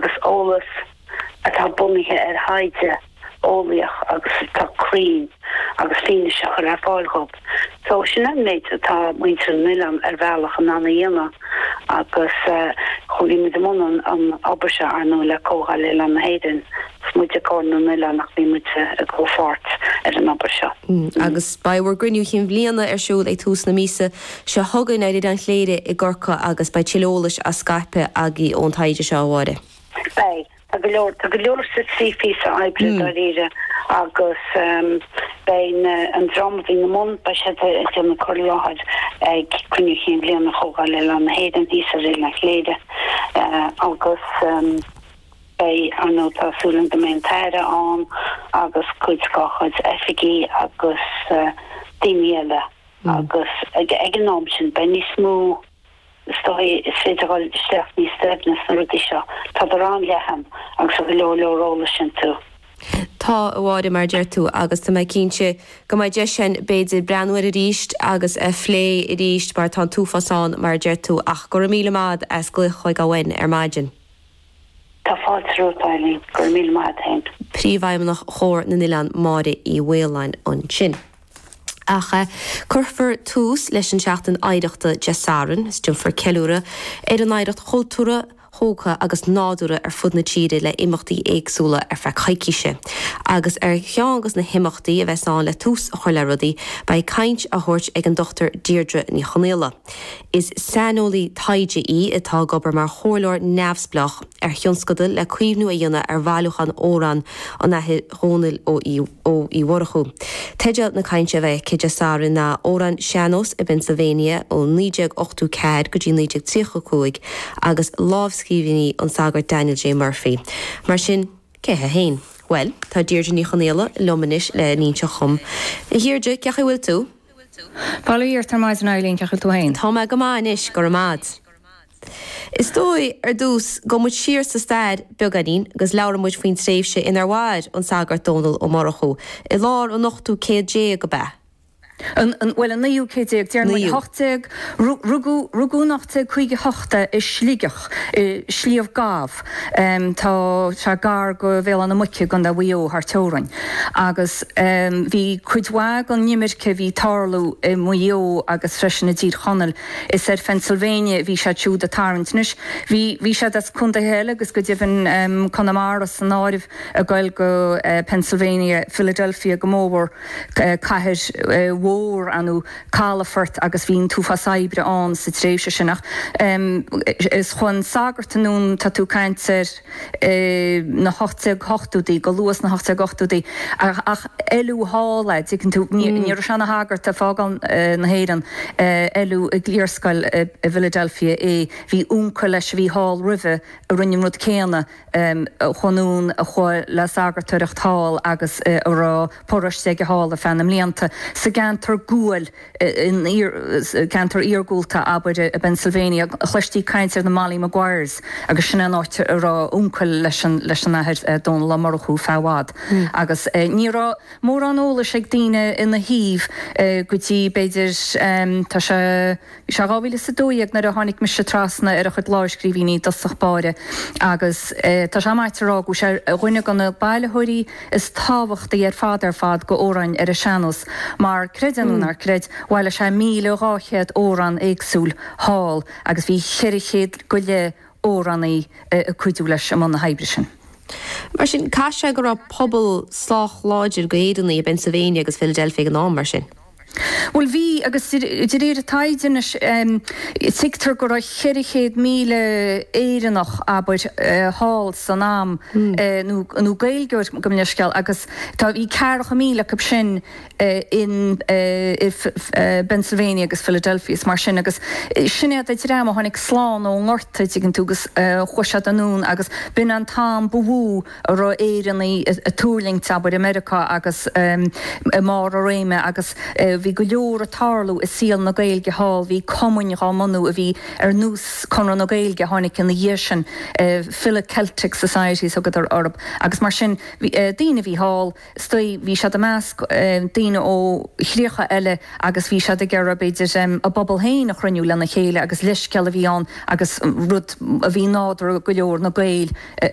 agus eolas atá bunaithe ar thaighde eolaíoch agus atá cruinn agus fianaise a chur ar fáil dhóibh. So sin an méid atá muintir an oileán ar bhealach in ann a dhéanamh agus chuaigh muid i mbun an obair seo ár ndóigh le Comhdháil Oileáin na hÉireann. Is muide Comhar na nOileán ach bhí muid i gcomhpháirt ar an obair seo. Agus beidh bhur gcruinniú chinn bhliana ar siúl ag tús na míosa. Seo chugainn ar Oileán Chléire i gCorcaigh agus beidh tuilleadh eolais á scaipeadh againn ón taighde seo, a Mháire. Beidh. Tá go leor. Tá go leor sa trí phíosa oibre, dáiríre, agus beidh na, an dream a bhí na mbun, beidh siad ag déanamh cur i láthair ag Cruinniú Cinn Bhliana Chomhdháil Oileáin na hÉireann thíos ar Oileán Chléire agus beidh, ar ndóigh, tá súil agam go mbeidh an tAire ann agus cuid dá chuid oifigigh agus daoine eile. Agus ag an am sin beidh níos mó, is dóigh, is féidir dhul isteach níos doimhne sna rudaí seo. Tádar an-leathan agus tá go leor leor eolais iontu. Tá, a Mháire, mar a deir tú, agus tá mé cinnte go mbeidh deis ann b'fhéidir breathnú air arís agus a phlé arís mar tá an t-uafás ann, mar a deir tú. Ach go raibh míle maith a'd as glaoch chugainn ar maidin. Tá fáilte romhat, a Eileen. Go raibh míle maith a't fhéin. Príomhfheidhmeannach Chomhar na nOileán Máire Uí Mhaoláin ansin. Ach cuirfear tús leis an tSeachtain Oidhreachta Dé Sathairn is déanfar ceiliúradh ar ár n-oidhreacht chultúrtha, thógtha agus nádúrtha ar fud na tíre le imeachtaí éagsúla ar feadh coicíse. Agus ar cheann de na himeachtaí a bheas ann le tús a chur le rudaí, beidh caint á thabhairt ag an Dr Deirdre Ní Chonghaile, Is saineolaí taighde í atá ag obair mar chomhairleoir neamhspleách ar thionscadail le caomhnú a dhéanamh ar bhailiúchán amhrán an Athar Dónall Ó Murchú. Teideal na cainte a bheidh aici Dé Sathairn ná 'Amhráin Sean-nós i bPennsylvania ó 1984 go dtí 1935 agus lámhscríbhinní an tsagairt Daniel J. Murphy'. Mar sin, cé hé féin? Bhuel, tá Deirdre Ní Chonghaile liom anois le n-inseacht dhom. A Dheirdre, cén chaoi a bhfuil tú? Bail ó Dhia ort ar maidin a Eileen, cén chaoi a bhfuil tú féin. Tá mé go maith anois, go raibh maith 'ad. Is dóigh, ar dtús, gabhfaidh muid siar sa stair, beagáinín, agus labhróidh muid faoin tréimhse inar mhair an Sagart Dónall Ó Murchú, i lár an ochtú céad déag, ab ea? An, an, bhuel, an naoú céad déag, déarfainn. Naoú. Hocht déag, rugadh, rugadh in ocht déag caoga hocht é, i Sligeach, i Sliabh Gamh. Tá sé gar go Bhéal Átha na Muice i gContae Mhaigh Eo thar teorainn agus bhí cuid mhaith den imirce a bhí ag tarlú i Maigh Eo agus freisin i dTír Chonaill is ar Phennsylvania a bhí siad siúd ag tarraingt. Anois bhí bhí siad as contaetha eile agus go deimhin Conamara san áireamh ag dul go Pennsylvania, Philadelphia go mór mór, cathair mhór ar ndóigh. calafort agus bhí an t-uafás oibre ann sa tréimhse sin ach is chuaigh an sagart anonn tá tú ag caint ar na hocht déag hochtóidí go luath sna hocht déag ochtóidí ach oileadh thall é an dtuigeann tú ní raibh sé ina shagart ag fágáil na hÉireann oileadh i gcliarscoil i bhFiladelfia é bhí uncail leis a bhí thall roimhe a rinne an rud céanna um chuaigh anonn a chuaigh le sagartóireacht thall agus a raibh paróiste aige thall ar feadh na mblianta. Sa gceantar guail, in ceantar iargúlta, abair, i bPennsylvania, chloistí caint ar na Molly Maguires agus sin é an áit a raibh uncail leis an Athair Dónal Ó Murchú ar feadh i bhfad agus ní raibh mórán eolais ag daoine ina thaobh go dtí, b'fhéidir, tá sé. Sea, dhá mhíle is a dó dhéag nuair a tháinic mise trasna ar a chuid láimhscríbhínní i dtosach báire, agus tá sé maíte a rá go bhfuil sé ar dhuine de na bailitheoirí is tábhachtaí ar fad ar fad d'amhráin ar an sean-nós, mar, creid é nó ná creid, bhailigh sé míle dhá chéad amhrán éagsúil thall, agus bhí cheithre chéad go leith amhránaí ag cuidiú leis i mbun na hoibre sin. Mar sin, caithfidh sé go raibh pobal sách láidir d'Éireannaigh i bPennsylvania agus Philadelphia ag an am, mar sin? Bhuel bhí agus de réir taighde anois tuigtear go raibh 400,000 Éireannach, abair, thall san am nó Gaeilgeoir gabh mo leithscéal agus tá bhí ceathracha míle acu sin i bPennsylvania agus Philadelphia is mar sin agus sin iad an dream a tháinig slán ón ngorta an dtuigeann tú agus chuaigh siad anonn agus b'in an t-am ba mhó a raibh Éireannaigh ag tuirlingt, abair, i Meiriocá agus i mbarr a réime agus bhí go leor ag tarlú i saol na Gaeilge thall. Bhí cumainn dhá mbunú a bhí ar nós Conradh na Gaeilge a tháinig ina dhiaidh sin, Philo-Celtic Societies a thugadar orthu agus mar sin bhí daoine a bhí thall, is dóigh, bhí siad i measc daoine ó chríocha eile agus bhí siad ag iarraidh b'fhéidir a bpobal féin a chruinniú lena chéile agus leithscéal a bhí ann agus rud a bhí nádúrtha go leor na Gaeil a